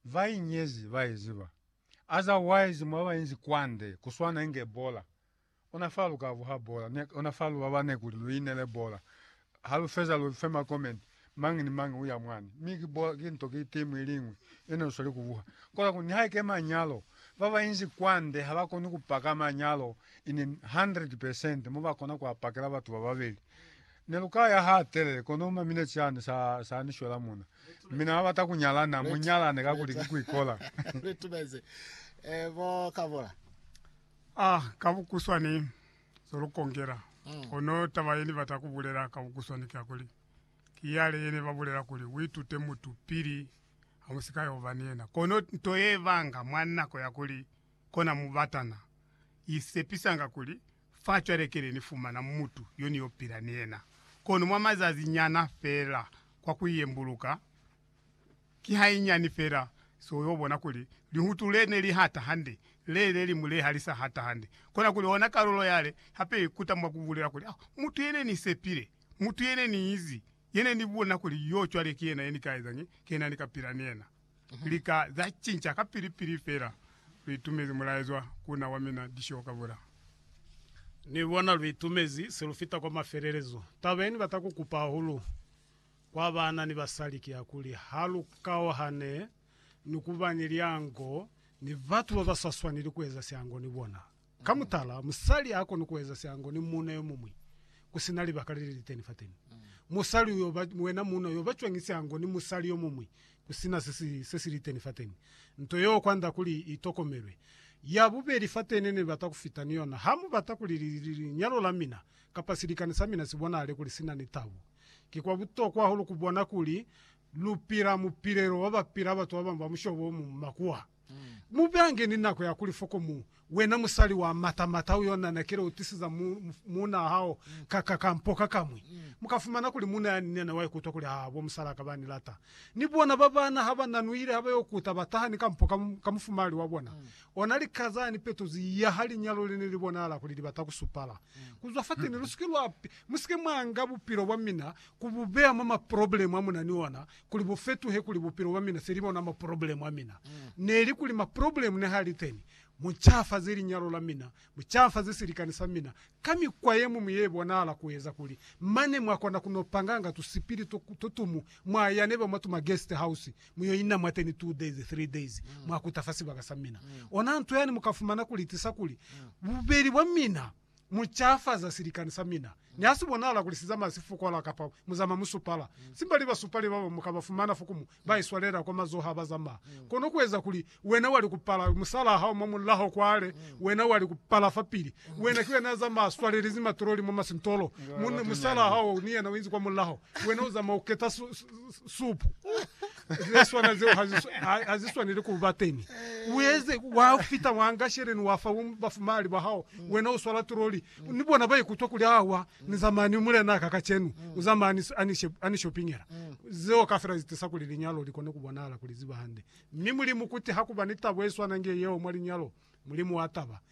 va inyezi ba i ziba. Otherwise mwa ba inzi kwande ku swana inge bola. Ona fa lu ka vuha bola, mi ona fa lu babane kuli lu inele bola. Ha lu feza lu fe ma comment, mañi ni mañi uya mwani. Mi ki bola, ki nto, ki team iliñwi yene lu sweli ku vuha. Kola kuli nihaike manyalo, ba ba inzi kwande ha ba koni ku paka manyalo in 100 percent mo ba kona ku a pakela batu ba babeli. Ne lu ka ya ha telele, kono mwa mineti yani sa, sa ni shwela muna. Mi na bata ku nyala, na mu nyalane kakuli ki ku ikola. Lu tumezi, eh, bo Kabula. Ah, ka bukuswani, zo lu kongela. Kono taba ye ni bata ku bulela ka bukuswani ki ya kuli, ki yale ye ne ba bulela kuli, u itute mutu pili ha mu si ka yo ba ni yena. Kono nto ye banga mwa nako ya kuli kona mubatana i sepisanga kuli, Fa cwale kele ni fumana mutu yo ni yo pila ni yena, kono mwa mazazi nyana fela kwa ku yembuluka, ki hanyinyani fela so yo bona kuli lihutu le ne li hata hande, le ne li mule ha li sa hata hande. Kona kuli ona kalulo yale hape i kuta mwa ku bulela kuli, Oh, mutu ye ne ni sepile, mutu ye ne ni izi, ye ne ni bona kuli yo cwale ki yena ye ni ka ezañi, ki yena ni ka pila ni yena. Lika za cinca kapili-pili fela luitumezi mulaezwa ku na wa mina Disho ka Vula. Ni bona luitumezi se lufita kwa mafelelezo. Taba ye ni bata ku kupa hahulu kwa baana ni basali ki ya kuli ha lu kauhane ni ku ba ni liango ni batu ba ba sa swaneli ku eza siango ni bona. Ka mutala, musali ha koni kueza siango ni muuna yomuñwi kusina libaka leliliteni fateni. Musali uyo ba, wena muuna uyo ba cwañi siango ni musali yomuñwi kusina sesi, sesiliteni fateni? Nto yeo kwanda kuli itokomelwe. Ya bubeli fateni nenibata kufita ni yona, ha mubata kuli li, li, linyalo la mina kapa silikani sa mina sibonahale kuli sina ni tabu. Ki kwa butokwa hahulu kubona kuli lupila mupilelo wabapila batu babañwi ba mushobo omuñwi makuwa. Mu beange ni nako ya kuli foko mu. Wena musali wa mata mata uyo na nakile u tisiza mu, muuna hao ka, ka, ka mpo ka kamwi. Mu ka fumana kuli muuna yani nena wa ikuta kuli ha bo musala ka ba ni lata. Ni bona ba bana ha ba nanuile ha ba yo kuta ba taha ni ka mpo ka, ka mufumahali wa bona. Ona lika za ni petozi ya ha linyalo le ne li bonahala kuli li bata ku supala. Ku zwa fateni, lu si ke lwa, mu si ke mwa nga bupilo bwa mina ku bu beya mwa maproblemu a mu na ni ona, kuli bu fetuhe kuli bupilo bwa mina se li bona ma problemu a mina. Neli kuli ma problemu ne ha li teni, mu cafaze linyalo la mina, mu cafaze silikani sa mina ka mikwa ye muñwi ye bonahala ku eza kuli mane mwa kona ku no panganga tu sipili to, to tumu mwa ya neba mwa tuma guest house mu yo ina mwateni two days, three days, mwa kuta fa sibaka sa mina. Ona nto yani mu ka fumana ku li tisa kuli bubeli bwa mina. Mu cafaza silikani sa mina. Ni ha si bonala kuli si zamaya sifukwala kapa mu zamaya musupala, simbali basupali baba mu ka ba fumana fokumu ba iswalela kwa mazoho ha ba zamaya. Kono ku eza kuli wena wa li ku pala musalaa hao mwa mulaho kwale, wena wa li ku pala fapili. Wena ki wena ya zamaya a swalelezi matololi mwa masintolo, mu, musalaa hao ni yena u inzi kwa mulaho, wena u zamaya u keta su, su, supu. Ze swana zeo ha zi, ha zi swaneli ku ba teñi. U eze, wa fita, wa nga sheleni, wa fa bafumahali ba hao, wena u swala turoli, ni bona ba ikutwa kuli, Awa, ni za mani, Mulenaa ka kacenu, u za mani, a ni, a ni shopingela. Zeo kafela zi tisa kuli linyalo li kone ku bonahala kuli ziba hande. Mi Mulimu kuti ha ku ba ni tabo ye swana nge yeo mwa linyalo, Mulimu wa taba.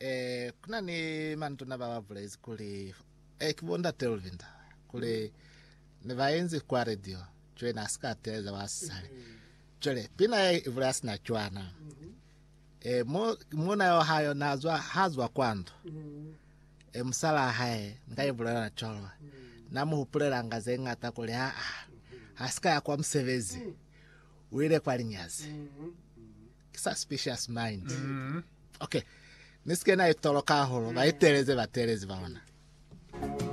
Eh, kuna ni manduna ba ba bulezi kuli, eh, ki bo ndate Luvinda, kuli ne ba enzi kwa radio, cwale na sika teleza wa sisale. Cwale, pina ye ibula ya sina cwana. Eh, mo, mona yo hayo na zwa, ha zwa kwa ndo. Eh, musala hae, nga ibulela na colo. Na muhupulela nga ze ngata kuli, ha, ha, ha sika ya kwa musebezi. Uile kwa linyazi. Suspicious mind. Mm. Okay. Ni sike na itoloka holo ba iteleze batelezi ba ona.